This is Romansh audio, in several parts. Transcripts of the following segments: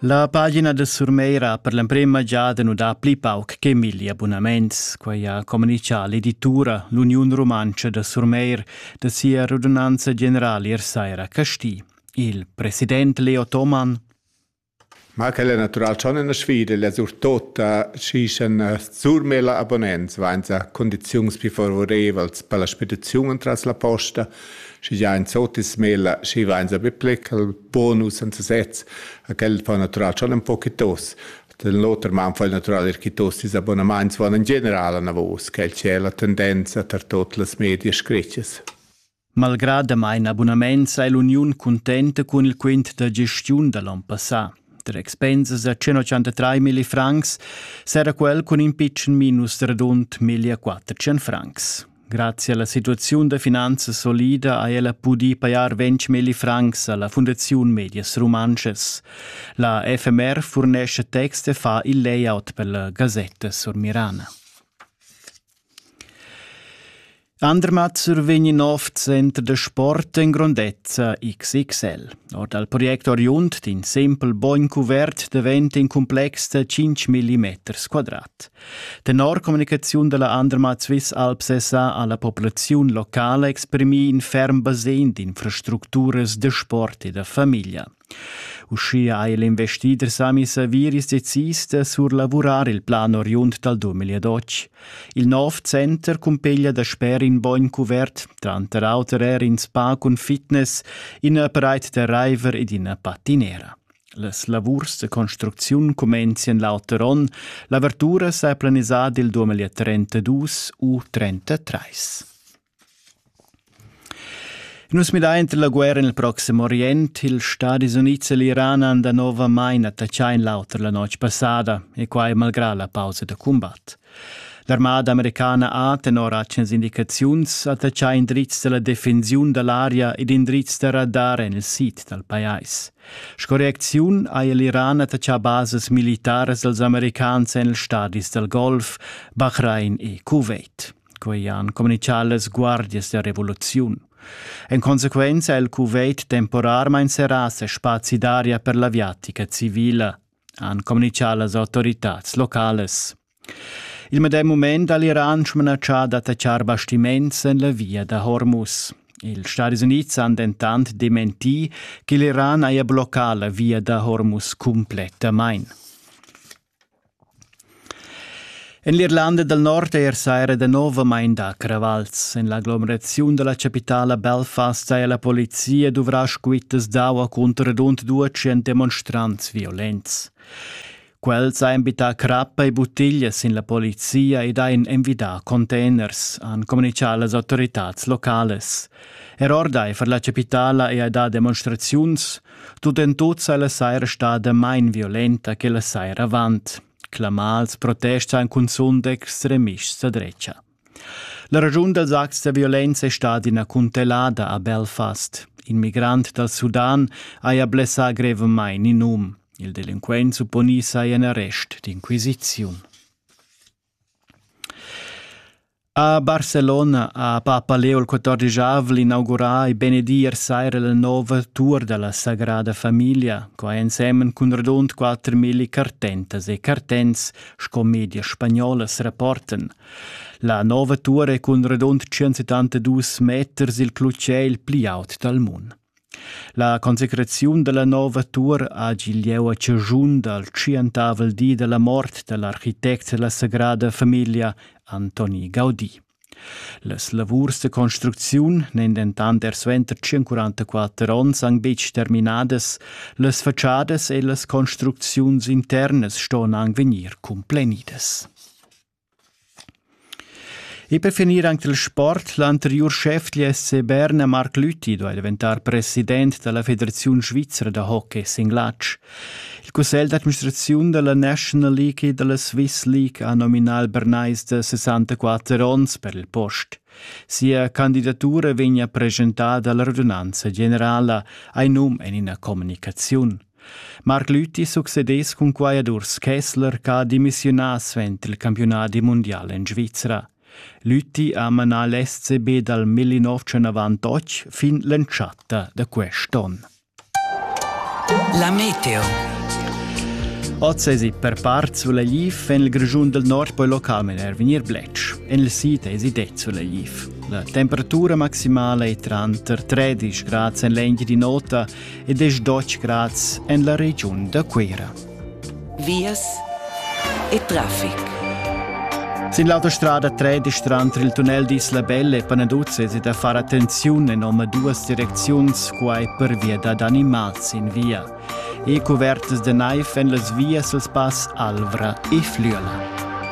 La pagina da Surmeira per l'emprema giada nu dà pli pauc che milli abunaments, quai ha comunichà l'editura L'Uniun Rumantscha da Surmeir da sia radunanza generala ier saira a Casti. Il president Leo Thomann Ma quel è natural schon in sfida, la surtota si sen Surmela abonnents vainsa condiziuns più favorevels per la spediziun tras la posta, schi già in sotismela si vainsa be plecal bonus en sesez. Quel fa natural schon un po chitos. Dall'oter man fa natural er chitos is abonaments van in general anavos, quel c'è la tendenza tar tot las media scretches. Malgrad damain abunaments è l'Uniun cuntenta cun il quint da gestiun da l'on passà. Tra expensas a 103 mili francs sarà quel cun in pitschen minus radund 1400 francs. Grazie alla situaziun da finanza solida ha ella pudì pajar ventg milli francs alla Fundaziun Medias Rumantschas. La FMR furnescha text e fa il layout per la Gazetta Surmirana. Andermatter vegn in nov center da sport en grondezza XXL. Ord al project oriund d'in simpel bogn cuvert davent in complex da 5 mm quadrat. Tenor communicaziun dalla Andermatt Swiss Alps SA ha la populaziun locala exprimì in ferm basegn d'infrastructuras da sport e da famiglia. Uschia ha l'investider Sami Saviris decis da surlavurar il plan oriund dal 2012. Il nov center cumpeglia dasper in bogn cuvert, tranter auter er in spa cun fitness, ina pareit da raiver ed ina patinera. Las lavurs da construcziun cumenzien l'auter onn. L'avertura s'ha planisà dil 2032 u 33. Nus midain entre la guerra nel proxim Orient, ils Stadis Units e l'Iran han da novamain attacchà in l'auter la notg passada, e quai malgrà la pausa da combat. L'armada americana ha tenor atgnas indicaziuns attaccà indrizs da la defensiun da l'aria ed indrizs da radar en il sid dal pajais. Sco reacziun haja l'Iran attaccà basas militaras als americans en ils stadis dal Golf, Bahrain e Kuwait. Quei han communichà las guardias da revoluziun. En consequenza ha il Kuwait temporarmain serrà ses spazi d'aria per l'aviatica civila. han communichà las autoritads localas. Il medem mument ha l'Iran smanatschà d'attaccar bastiments en la via da Hormuz. Ils Stati Units han dentant dementì che l'Iran haja bloccà la via da Hormuz cumplettamain. En l'Irlanda dal Nord è er saira danovamain dà cravals. En l'aglomeraziun da la chapitala Belfast haja la polizia duvrà squittas d'aua cunter rund duecent demonstrants violents. Quels han bittà crappa e buttiglias sin la polizia ed han envidà containers, han communitgà las autoritads localas. Er ordaifer la chapitala è dà demonstraziuns, Tut en tut sa la saira stada main violenta che la saira avant. Clamals protests han cunzunt extremists a drecha. La ragiun dals acts da violenza è stada ina cuntellada a Belfast. In migrant dal Sudan haja blessà grevamain in um. Il delinquent supponì saja in arrest d'inquisiziun. A Barcelona ha papa Leo il quatordischavvel inaugurà e benedì ier saira la nova tur da la Sagrada Famiglia, quai ensemen cun radund quattrmilli cartentas e cartents sco medias spagnolas rapportan. La nova tur è cun radund 172 meters il clutger il pli aut dal mund. La consecraziun dalla nova tuor hagi lieu a caschun dal tschientavel di dalla mort dall'architect dalla Sagrada Famiglia Antoni Gaudi. Las lavurs da construcziun n'èn dentant er suenter 144 onns anc betg terminadas, las fatschadas e las construcziuns internas ston anc vegnir cumplenidas. E per finir anc dal sport, l'anteriur schef dal SC Berna, Marc Lüthi, duai daventar president da la Federaziun svizra da hockey singlatsch. Il cussegl d'administraziun da la National League e da la Swiss League ha nominà il Bernais da 64 onns per il post. Sia candidatura vegnia preschentada alla radunanza generala, hai num en ina communicaziun. Marc Lüthi succedess cun quai ad Urs Kessler ch'ha demissiunà suenter il campiunadi mundial en Svizra. Lüthi ha manà l'SCB dal 1998 fin l'entschatta da quest onn. La meteo. Oz esi per part Sulaiv, en il Grischun del Nord poi localment er vegnir bletsch. En il sid esi det Sulaiv. La temperatura maximala è tranter 13 grad en l'engine di nota e desch dotg grads en la regiun da Cuira. Vias e traffic. Sin l'autostrada 13 tranter il tunnel d'Isla Belle e Panaduzzi è da far attenziun en omaduas direcziuns, quai pervia dad animals in via. E cuvertas da naiv en las vias als pass Alvra e Flüela.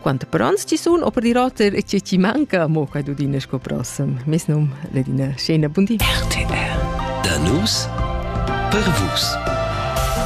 Quante pranz ci sun, o per dir oter, e ce ci manca, mo quai dudine sco prossem. Mes num l'edina scena bundi. RTR. Da nus per vus.